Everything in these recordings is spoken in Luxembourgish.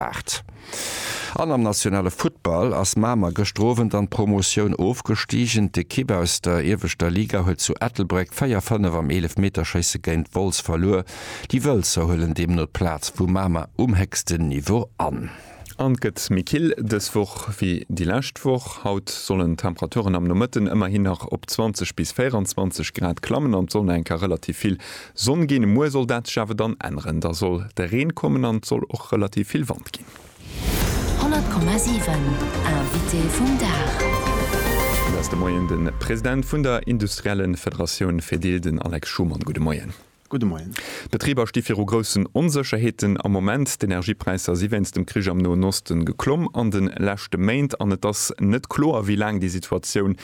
Aart. An am nationale Futtball ass Mamer gëschter Owend an d'Promotioun ofgestigen. D'Ekipp aus der ieweschter Liga huet zu Ettelbréck 4, 5 am Eelefmeterschéisse géint Wolz verluer. Déi Wëlzer huelen deemno d'Plaz vu Mamer um héchsten Niveau an. An et gëtt méi kill dës Woch wéi déi lescht Woch. Haut sollen d'Temperaturen am Nomëtten ëmmerhin nach op 20 bis 24 Grad klammen an d'Sonn enker relativ vill Sonn ginn, muer soll dat sech awer dann änneren, da soll de Reen kommen an et soll och relativ vill Wand ginn. 100,7 Invité vum Dag. Mir ass de Moien de President vun der industriellen Federatioun Fedil, den Alex Schumann. Gudde Moien. Gudde Moien. D'Betriber sti viru groussen Onsécherheeten am Moment. D'Energiepräisser si wéinst dem Krich am Noen Osten geklomm an de leschte Méint an et ass net kloer, wéi laang déi Situatioun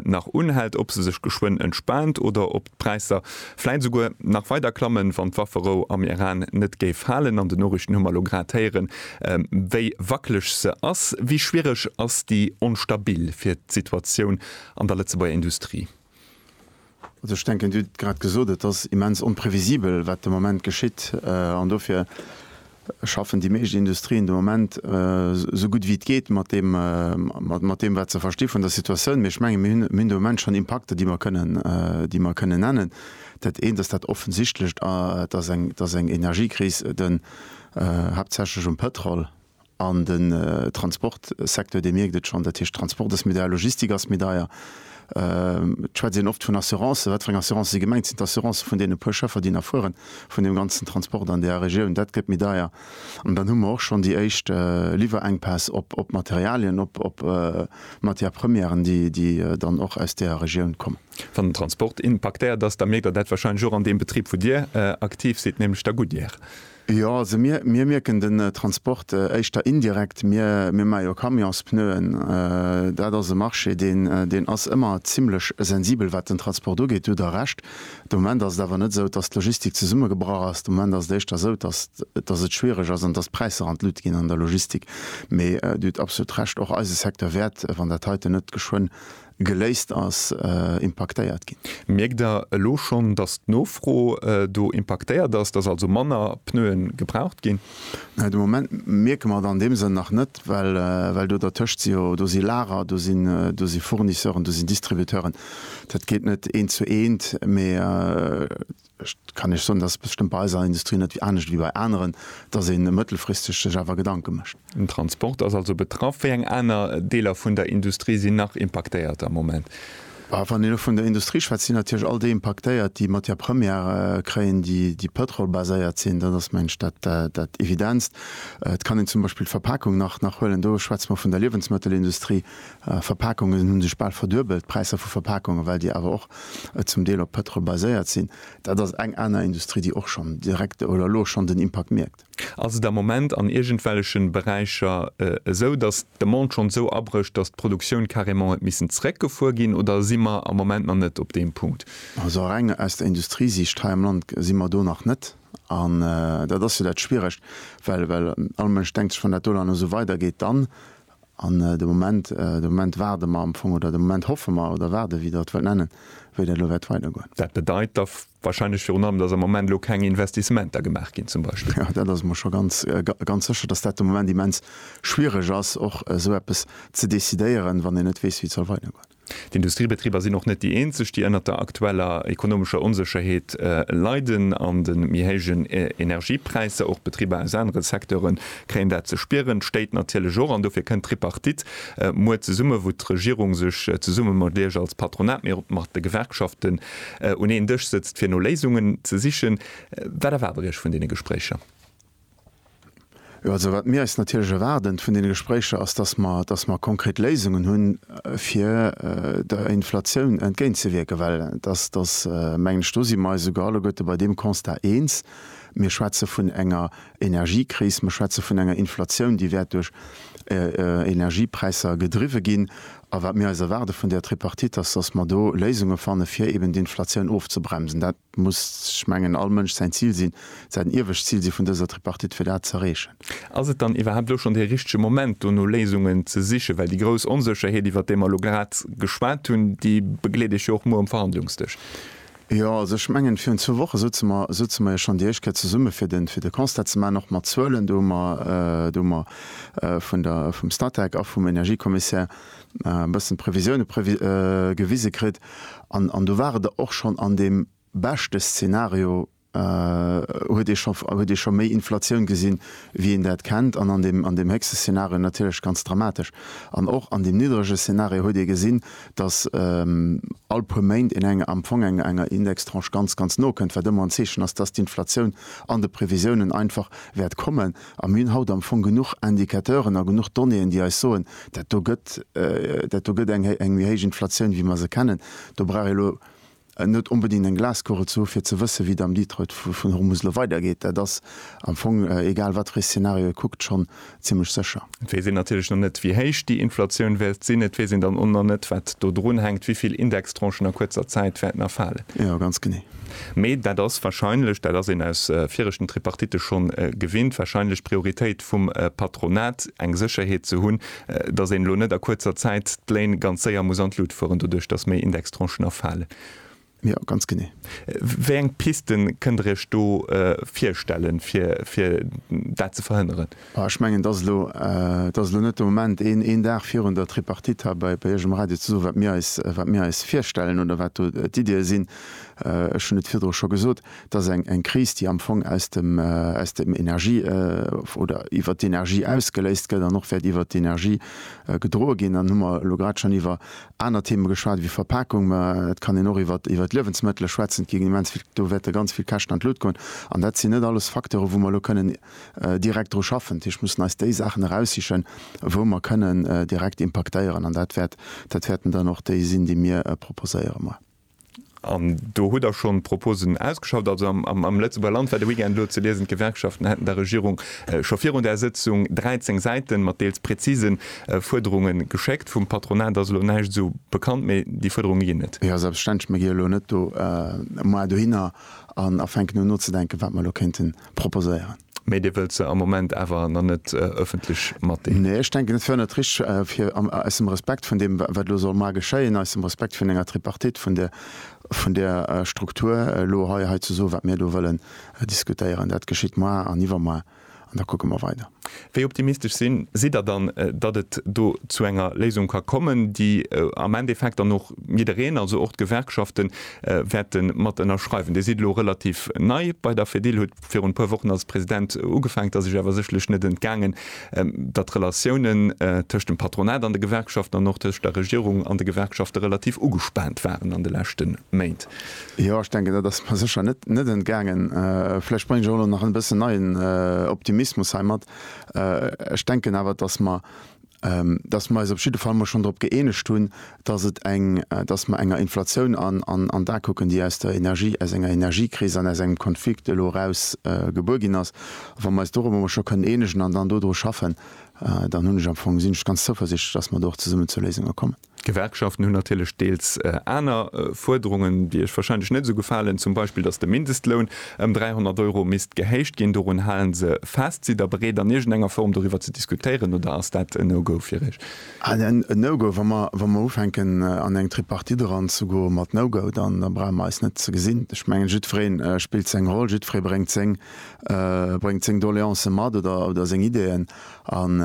nach unhält, ob se sech geschwënn entspaant oder ob D'Präisser vläit esouguer nach weider klammen, wann d'Wafferou am Iran net géif halen. An den Noriichten hu mer elo grad héieren, wéi wackeleg se ass. Wéi schwiereg ass déi onstabil fir d'Situatioun an der Lëtzebuerger Industrie? Also ech denken, Dir hutt et grad gesot, et ass immens onprevisibel, wat de Moment geschitt. An dofir schaffen déi meescht Industrien de Moment esou gutt wéi et geet mat deem, wat se versti vun der Situatioun. Mee ech menge mir hunn de Moment schonn Impakter, déi mer kënnen nennen. Dat eent ass dat Offensichtlecht, Et ass eng Energiekris, haaptsächlech um Pétrol. An den Transportsecteur, dee mierkt et schonn. Dat heescht, Transport ass méi deier, Logistik ass méi deier. Et schwätzt een oft vun Assurancen. Wat fir eng Assurancen si gemengt? Sinn d'Assurancen vun deene puer Schëffer, déi nach fueren, vun deem ganzen Transport an där Regioun? Dat gëtt méi deier. An dann hu mer och schonn déi éischt Liwwerenkpäss op Materialien, op Matières premièren, déi dann och aus där Regioun kommen. Wann den Transport impaktéiert ass, da mierkt Der dat wahrscheinlech och an deem Betrib, wou Dir aktiv sidd, nämlech der Goodyear. Jo, also mir, mir mierken den Transport éischter indirekt. Mir, mir maache jo Camionspneuen. Dat ass e Marché, deen, deen ass ëmmer zimlech sensibel, wat den Transport ugeet. Do hutt Der Recht. De Moment ass et awer net esou, dass d'Logistik zesummegebrach ass. De Moment ass et éischter esou, dass, dass et schwierig ass an dass d'Präisser an d'Lut ginn an der Logistik. Mee Dir hutt absolut Recht, och eise Secteur wäert, wann dat heiten net geschwënn Geléist ass, impaktéiert ginn. Mierkt Der elo schonn, dass d'Nofro do impaktéiert ass, dass also manner Pneuen gebraucht ginn? De Moment mierke mer et an deem Sënn nach net, well do dertëscht si jo, do si Lager, do si Fournisseuren, do sinn Distributeuren. Dat geet net eent zu eent, mee. Ech kann Iech soen, dass et bestëmmt bei eiser Industrie net anescht wéi bei aneren, dass ee mëttelfristeg sech awer Gedanke mécht. Den Transport ass also betraff. Wéi eng aner Deeler vun der Industrie sinn nach impaktéiert am Moment? Wann een elo vun der Industrie schwätzt, sinn natierlech all déi impaktéiert, déi Matière première kréien, déi pëtrolbaséiert sinn. Dat ass, mengen ech, dat Evidenzt. Et kann een zum Beispill d'Verpakung nach huelen. Do schwätze mer vun der Liewensmëttelindustrie, Verpakungen hunn sech bal verduebelt, d'Präisser vu Verpakungen, well déi awer och zum Deel op Pëtrol baséiert sinn. Dat ass eng aner Industrie, déi och schonn direkt oder elo schonn den Impakt mierkt. Ass et am Moment an iergendwellechen Beräicher esou, dass d'Demande schonn esou abrécht, dass d'Produktioun carrément huet missen zeréckgefuer ginn, oder si mer am Moment nach net op deem Punkt? Also reng aus der Industriesicht hei am Land si mer do nach net. An dat ass jo dat Schwieregt, well well all Mënsch denkt sech, wann dat do nach esou weidergeet, dann An de Moment, de Moment waarde mer am Fong, oder de Moment hoffe mer oder waarde, wéi Der et wëllt nennen, wéi dat elo wäert weidergoen. Dat bedeit da wahrscheinlech virun allem, dass am Moment elo keng Investissementer gemaach ginn zum Beispill. Jo, dat ass mer scho ganz, ganz sécher, dass dat de Moment immens schwierig ass, och esou eppes ze decidéieren, wann een net weess, wéi et soll weidergoen. D'Industriebetriber sinn och net déi eenzeg, déi ënnert der aktueller ekonomescher Onsécherheet leiden an de méi héijen Energiepräisser. Och Betriber aus anere Secteure kréien dat ze spieren, d'Stéit natierlech och. An dofir kënnt d'Tripartite muer zesummen, wou d'Regierung sech zesumme mat Iech als Patronat, mee och mat de Gewerkschaften un een Dësch sëtzt, fir no Léisungen ze sichen. Wat erwaart Der Iech vun deene Gespréicher? Jo, also wat mir eis natierlech erwaarden vun deene Gespréicher ass, dass mer, dass mer konkret Léisungen hunn, fir der Inflatioun entgéintzewierken, well dass, dass, mengen ech, do si mer eis esouguer alleguerte bei deem Constat eens, Mir schwätze vun enger Energiekris, mir schwätze vun enger Inflatioun, déi wäert duerch Energiepräisser gedriwwe ginn. A wat mir eis erwaarde vun där Tripartite ass, dass mer do Léisunge fanne fir eeben d'Inflatioun ofzebremsen. Et muss, ech mengen, all Mënsch säin Zil sinn, säin iewescht Zil si vun dëser Tripartite, fir dat z'erreechen. Ass et dann iwwerhaapt elo schonn dee richtege Moment, do no Léisungen ze sichen? Well déi grouss Onsécherheet, iwwert déi mer elo grad geschwat hunn, déi begleet iech jo och muer um Verhandlungsdësch. Jo, also ech mengen, virun zwou Woche souze mer, souze mer jo schonn déi éischt Kéier zesumme fir de, fir de Constat ze maachen, och mat Zuelen. Do hu mer, do hu mer vun der, vum Statec a vum Energiekommissär e bëssen Previsioune gewise kritt an do ware der och schonn an deem beschte Szenario huet ee scho huet ee scho méi Inflatioun gesinn, wéi een dat kennt an an deem héchste Szenario natierlech ganz dramatesch. An och an deem niddrege Szenario huet ee gesinn, datt all puer Méint een enger am Fong enger enger Indextranche ganz ganz no kënnt, wat ëmmer en Zeechen ass, datt d'Inflatioun an de Previsiounen einfach wäert kommen. A mir hunn haut am Fong genuch Indicateuren a genuch Donnéeën, déi eis soen, dat do gëtt, dat do gëtt eng, eng méi héich Inflatioun, wéi mer se kennen. Do brauch ee lo net onbedéngt eng Glaskugel ze hu fir ze wësse wéi et am Detroit vun Hormuz elo weidergeet. Dat ass am Fong, egal wat fir ee Szenario ee kuckt, schonn zimmlech sécher. Et weess een natierlech nach net, wéi héich déi Inflatioun wäert sinn. Et weess een dann och nach net, wat do drunhänkt, wéi vill Indextranchen a kuerzer Zäit wäerten erfalen. Jo, ganz genee. Mee dat ass wahrscheinlech, dat ass een aus viregten Tripartitte schonn gewinnt, wahrscheinlech d'Prioritéit vum Patronat, eng Sécherheet ze hunn, datt een elo net a kuerzer Zäit d'Léin ganz séier muss an d'Lut fueren, doduerch datt méi Indextranchen erfalen. Jo, ganz genee. Wéi eng Piste kënnt Der Iech do virstellen, fir dat ze verhënneren? Ech mengen, et ass elo net de Moment, een Dag virun der Tripartite hei bei Iech um Radio ze soen, wat mir eis virstellen oder wat do d'Iddie sinn. Ech hunn et virdru scho gesot, et ass eng Kris, déi am Fong aus dem Energie oder iwwert d'Energie ausgeléist gëtt an och wäert iwwert d'Energie gedroe ginn. Dann hu mer elo grad schonn iwwer aner Theeme geschwat ewéi Verpakung, mä et kann een och iwwert d'Liewensmëttele schwätzen. Et ginn immens vill, do wäerte ganz vill Käschten an d'Lut goen. An dat sinn net alles Facteure wou mer elo kënnen direkt dru schaffen. Dat heescht, mir mussen eis déi Saachen eraussichen, wou mer kënnen direkt impaktéieren, an dat wäert, dat wäerten dann och déi sinn, déi mir proposéiere mar. An do hutt Der schonn Proposen ausgeschafft. Also am, am, am Lëtzebuerger Land war de Weekend elo ze liesen, d'Gewerkschaften hätten der Regierung scho virun där Sëtzung 13 Säiten mat deels präzise Fuerderunge geschéckt. Vum Patronat ass elo näischt esou bekannt, mee déi Fuerderunge ginn et. Jo, selbstverständlech. Mir gi jo elo net do, mar dohinner an a fänken un nozedenken, wat mer elo kéinten. proposéieren. Mee Dir wëllt se am Moment awer nach net ëffentlech matdeelen? Nee, ech denken, et wär net richtig, fir, aus dem Respekt vun deem, wat elo soll mar geschéien, aus dem Respekt vun enger Tripartite, vun där, vun där Struktur, elo hei, hei ze soen, wat mir do wëllen diskutéieren. Dat geschitt moar an iwwermoar, an da kucke mer weider. Wéi optimistesch sinn si der dann, datt et do zu enger Léisung ka kommen, déi am Endeffekt dann och jiddereen, also och d'Gewerkschafte wäerte mat ënnerschreiwen? Dir sidd elo relativ nei bei der Fedil, hutt virun e puer Wochen als President ugefaangen. Et ass Iech awer sécherlech net entgaangen, datt d'Relatiounen tëscht dem Patronat an de Gewerkschaften an och tëscht der Regierung an de Gewerkschafte relativ ugespaant waren an de leschte Méint. Jo, ech denken, dat ass mer sécher net entgaangen. Vläicht bréngen ech och elo nach e bëssen neien Optimismus hei mat. Ech denken awer, datt mer eis op jidde Fall mol schonn drop gëeenegt hunn, datt mer enger Inflatioun an d'A kucken, déi aus der Energie, aus enger Energiekris an aus engem Konflikt elo eraus gebuer ginn ass. A wa mer eis dorobber mol scho kënnen eenegen an dann dodru schaffen, dann hunn ech am Fong, sinn ech ganz zouversichtlech, datt mer do och zesummen zu Léisunge kommen. D'Gewerkschaften hunn natierlech deels aner Fuerderungen, déi Iech wahrscheinlech net esou gefalen, zum Beispill, dass de Mindestloun ëm 300 Euro misst gehéicht ginn. Dorun halen se fest. Sidd Der bereet, an iergendenger Form doriwwer ze diskutéieren, oder ass dat en No-Go fir Iech? En No-Go. Wa mer ufänken, an eng Tripartite eranzegoen mat No-Go, da brauche mer eis net ze gesinn. Ech mengen, jiddweree spillt seng Roll, jiddweree bréngt seng Doleancë mat oder seng Ideeën. An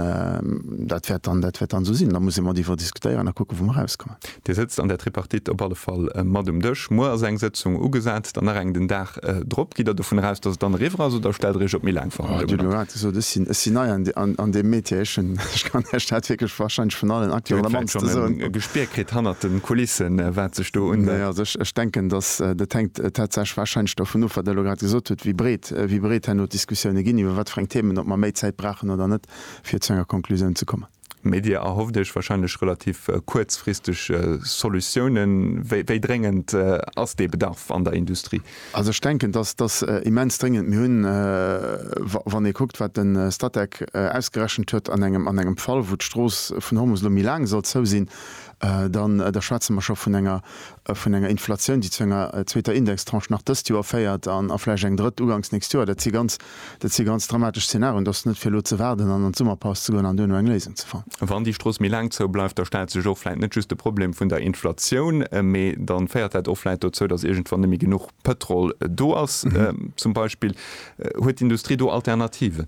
dat wäert dann, dat wäert dann esou sinn. Da muss ee matiwwer diskutéieren a kucken, wou mer erauskommen. Dir sëtzt an där Tripartite op alle Fall mat um Dësch. Muer ass eng Sëtzung ugesat, dann nach eng den Dag drop. Gitt Der dovun eraus, dass et dann eriwwer ass oder stellt Der Iech op méi laang Verhandlungen an? Ech hunn elo grad gesot, ech sinn, ech sinn nei an deem Metier. Ech hunn, ech kann Iech dat wierklech warscheinlech vun allen Acteuren am mannste soen. Dir hutt vläicht schonn e Gespier kritt hannert de Kulissen, wat sech do unhëlt. Nee, also ech denken, dass dat hänkt tatsächlech warscheinlech dovun of, wat Der elo grad gesot hutt, wéi breet gesäit, wéi breet herno d'Diskussioune ginn, iwwer wat fir eng Themen, ob mer méi Zäit brauchen oder net, fir zu enger Konklusioun ze kommen. Mee Dir erhofft Iech wahrscheinlech relativ kuerzfristeg Solutiounen. Wéi dréngend ass dee Bedarf an der Industrie? Also ech denken, dass dass immens dréngend. Mir hunn, wann ee kuckt, wat de Statec ausgerechent huet, an engem an engem Fall, wou d'Strooss vun Hormus elo méi laang soll zou sinn, dann da schwätze mer scho vun enger, vun enger Inflatioun, déi zu enger zweeter Indextranche nach dëst Joer féiert an a vläicht eng drëtt ugangs nächst Joer, dat si ganz, dat si ganz dramatesch Szenarioen. D'ass net fir elo ze waarden an an d'Summerpaus ze goen an duerno eng Léisung ze fannen. Wann déi Strooss méi laang zou bleift, da stellt sech och vläicht net just de Problem vun der Inflatioun, mee dann féiert dat och vläicht dozou, dass iergendwann net méi genuch Pëtrol do ass, zum Beispill. Huet d'Industrie do Alternativen?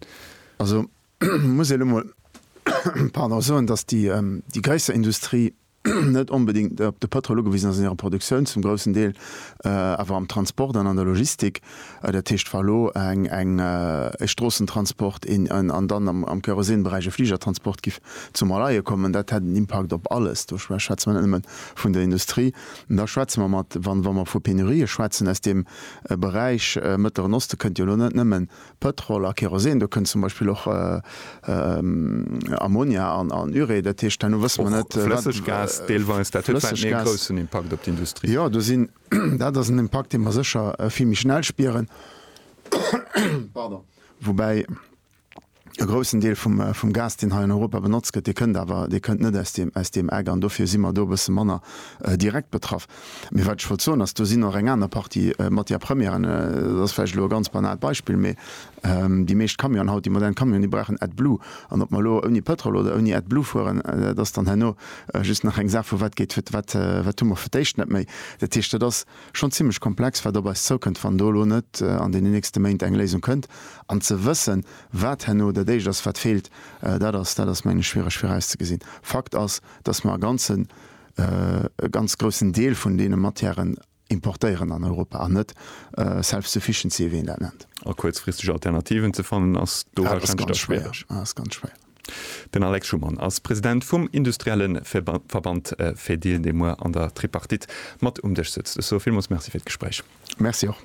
Also muss ee lo mol, pardon, soen, dass déi, déi gréisser Industrie, net onbedéngt op de Pëtrol ugewisen ass an hirer Produktioun zum groussen Deel, awer am Transport an an der Logistik, dat heescht wa elo eng e Stroossentransport an dann am Kerosinberäich e Fligertransport giff zum Erleie kommen, dat hätt en Impakt op alles, do schwätze mer net nëmme vun der Industrie, da schwätze mer mat, wa mer vu Penurië schwätzen aus deem Beräich, Mëttleren Osten kënnt jo elo net nëmmen Pëtrol a Kerosin, do kënnt zum Beispill och Ammonia an Urée, dat heescht, herno wësse mer net, wat. Och flësseg Gas deelweis, dat huet vläicht méi e groussen Impakt op d'Industrie. Jo, do sinn, dat ass en Impakt, dee mer sécher vill méi schnell spieren, pardon, woubäi e groussen Deel vum Gas, deen hei an Europa benotzt gëtt, dee kënnt awer, dee kënnt net aus deem Eck an dofir si mer do e bësse manner direkt betraff. Mee wat ech wollt soen ass, do sinn och eng aner Partie Matières premièren, dat ass vläicht elo e ganz banaalt Beispill, mee déi meescht Camionen haut, déi modern Camionen, déi brauchen AdBlue. An ob mer elo ouni Pëtrol oder ouni AdBlue fueren, dat ass dann herno just nach eng Saach vu wat geet, wat hu mer fir d'éischt net méi. Dat heescht, dat ass schonn zimmlech komplex, wat op eis zoukënnt, wann do elo net an deenen nächste Méint eng Léisung kënnt. An ze wëssen, wat herno dat éischt ass, wat feelt, dat ass, dat ass meng ech schwiereg virauszegesinn. Fakt ass, dass mer e ganze e ganz groussen Deel vun deene Matièren importéieren an Europa an net self-sufficiency, wéi een dat nennt. A kuerzfristeg Alternativen ze fannen ass do warscheinlech da schwiereg. Dat ass ganz schwéier. Den Alex Schumann ass President vum industrielle Verband Fedil, dee muer an der Tripartite mat um Dësch sëtzt. Ech soe villmools Merci fir d'Gespréich. Merci och.